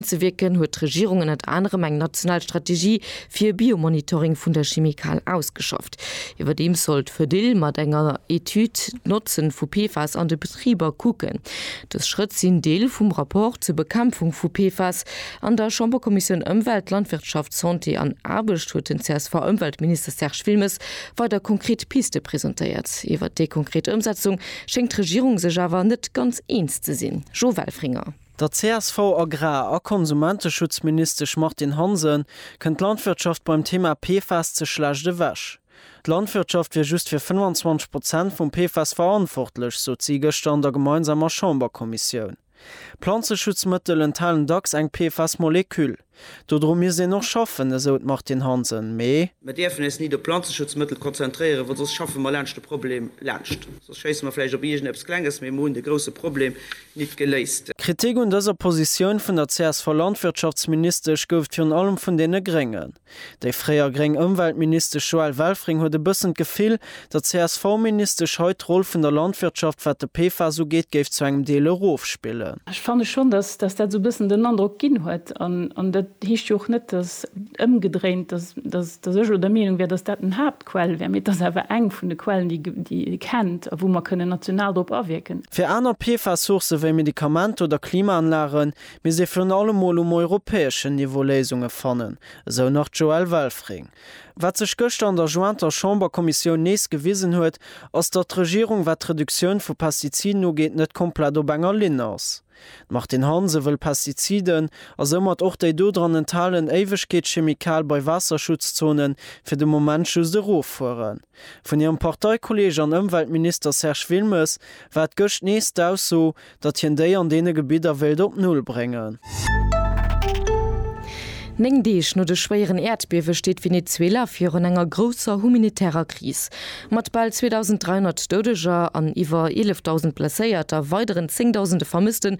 Zewierken huet d'Regierung ënnert anerem eng national Strategie fir e Biomonitoring vun der Chimikal ausgeschafft. Iwwerdeems soll d'Fedil mat enger Etüd d'Notzen vu PFAS an de Betriber kucken. Dës Schrëtt sinn Deel vum Rapport zur Bekämpfung vu PFAS. An der Chamberkommissioun Ëmwelt, Landwirtschaft, Santé an Aarbecht huet den CSV-Ëmweltminister Serge Wilmes weider konkret Piste presentéiert. Iwwert déi konkret Ëmsetzung schéngt d'Regierung sech awer net ganz eens ze sinn. Jo Welfringer. Der CSV-Agrar a Konsumenteschutzministesch Martine Hansen kënnt d'Landwirtschaft beim Thema PFAS ze schlecht ewech. D'Landwirtschaft wier just fir 25 Prozent vum PFAS verantwortlech, sot si gëschter an der gemeinsamer Chamberkommissioun. Planzeschutzmëttel enthalen dacks eng PFAS-Moleküll. Dodru misst een och schaffen, esou d'Martine Hansen. Mee. Mer dierfen eis nit op Planzeschutzmëttel konzentréieren, well soss schaffe mer laanscht de Problem laanscht. Soss schéisse mer vläicht op iergendeppes Klenges, mee mer hunn de grousse Problem nit geléist. Kritik un dëser Positioun vun der CSV-Landwirtschaftsministesch gouf et virun allem vun deene Gréngen. Déi fréier gréng Ëmweltministesch Joëlle Welfring huet e bëssen d'Gefill, datt d'CSV-Ministesch hei d'Roll vun der Landwirtschaft, wat de PFAS ugeet, géif zu engem Deel erofspillen. Ech fanne schonn, datt dat esou e bëssen den Androck ginn huet. An dat heescht jo och net, datt, ëmgedréint, datt ech elo der Meenung wär, datt dat den Haaptquell wär, mee et ass awer eng vun de Quellen, déi ee kennt a wou mer kënnen national drop awierken. Fir aner PFAS-Sourcë wéi Medikamenter oder Klimaanlagen misst ee virun allem mol um europäeschen Niveau Léisunge fannen, Esou nach d'Joëlle Welfring. Wat sech gëschter an der jointer Chamberkommissioun nees gewisen huet, ass, datt d'Regierung, wat d'Reduktioun vu Pestiziden ugeet, net komplett op enger Linn ass. D'Martine Hansen wëll Pestiziden, a soumat och déi do dran enthalen Éiwegkeetschemikal bei Waasserschutzzonen, fir de Moment just eroffueren. Vun hirem Parteikolleeg an Ëmweltminister Serge Wilmes war et gëscht nees d'Ausso, datt hien déi an deene Gebidder wéilt op Null bréngen. Néng Deeg no de schwéieren Äerdbiewe steet Venezuela virun enger grousser humanitärer Kris. Mat bal 2.300 Doudeger an iwwer 11.000 Blesséierter, weideren Zéngdausende Vermëssten,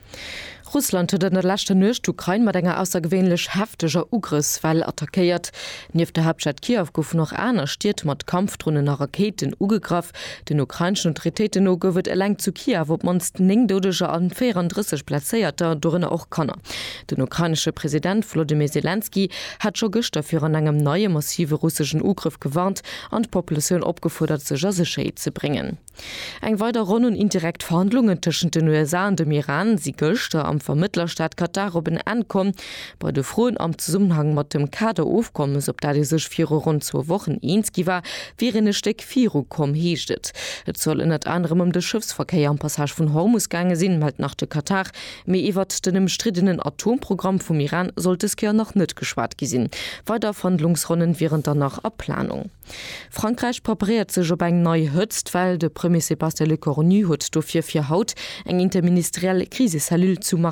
Russland huet an der leschter Nuecht d'Ukrain mat enger aussergewéinlech hefteger Ugrëffswell attackéiert. Nieft der Haaptstad Kiew goufen och aner Stied mat Kampfdronen a Rakéiten ugegraff. Den ukraineschen Autoritéiten no gouf et eleng zu Kiew op d'mannst 9 Doudeger an 34 Blesséierter, dorënner och Kanner. Den ukrainesche President Wolodymyr Selenskyj hat scho gëschter virun engem neie massive russeschen Ugrëff gewarnt an d'Populatioun opgefuerdert, sech a Sécherheet ze bréngen. Eng weider Ronn un indirekt Verhandlungen tëschent den USA an dem Iran si gëschter am Vermëttlerstaat Katar op en Enn komm. Bei de Froen am Zesummenhang mat dem Kader-Ofkommes, op dat ee sech viru ronn zwou Wochen eens gi war, wier een e Stéck viru komm, heescht et. Et soll ënnert anerem ëm de Schëffsverkéier am Passage vun Hormus gaange sinn, mellt nach de Katar. Mee iwwert den ëmstriddenen Atomprogramm vum Iran soll dës Kéier nach net geschwat gi sinn. Weider Verhandlungsronnen wieren dann nach a Planung. Frankräich preparéiert sech op eng nei Hëtztwell. De Premier Sébastien Lecornu huet dofir fir haut eng interministeriell Krisecellule zu Marseille